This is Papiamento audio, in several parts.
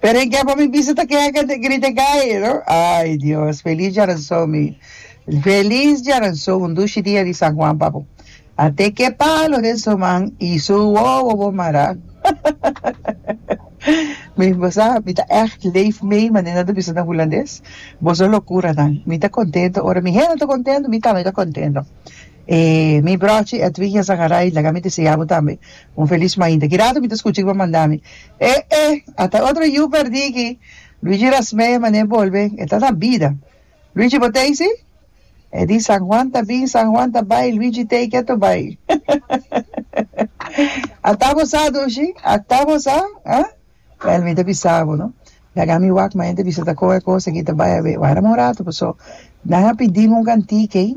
Pero e ke pa mi bisa ta kehá kende grita gay no. Ay Dios, feliz djaranzou mi. Feliz djaranzou un dushi dia di San Juan papu. A te ke palo den su man y su wowo bo mará. mi bo sa mi ta echt leef mee manera nan ta bisa den hulandes. Boso locuranan. Mi ta contento ora mi hende ta contento mi tambe ta contento. E mi brochi Edwin Azagaray laga mi desea bo tambe un felis mainta. Kirato mi ta skucha ku bo manda mi, E e, ata otro yu pèrdí aki. Luigi Rasmee manera bolbe, e ta na bida. Luigi, bo ta hisi? E di, San Juan ta bin, San Juan ta bai, Luigi take it to bai. Ata bo sa dushi? Ata bo sa? Ha? Wèl, mi ta bisa bo no, laga mi wak mainta bisa ta kon e kos aki ta bai a bai. Wara mi un ratu, paso nan a pidi mi un kanti kei.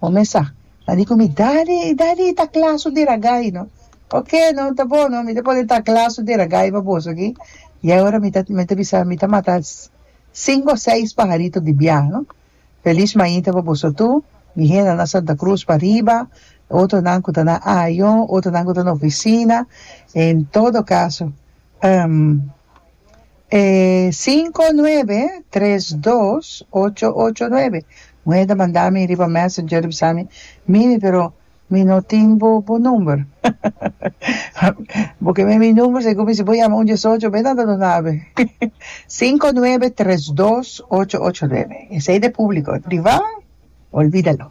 Bo mesa ta di ku mi, Dadi, dadi i ta kla su diragai, no? Oke, no, ta bon, no, mi ta pone ta kla su diragai pa boso aki. I awor mi ta, mi ta bisa, mi ta mata sinku o seis paharito di biaha, no? Felis mainta pa boso tur, mi henda na Santa Cruz pariba, otronan ku ta na ayo, otronan ku ta na ofisina, en todo kaso, ehm. E cinco nuebe tres dos ocho ocho nuebe muhe ta manda mi riba messenger di bisa mi mimi pero mi no tin bo bo number bo keme mi number si ku mi si bo yama un diesocho be nan ta duna awe cinco nuebe tres dos ocho ocho nuebe esei ta e publico priva olvida lo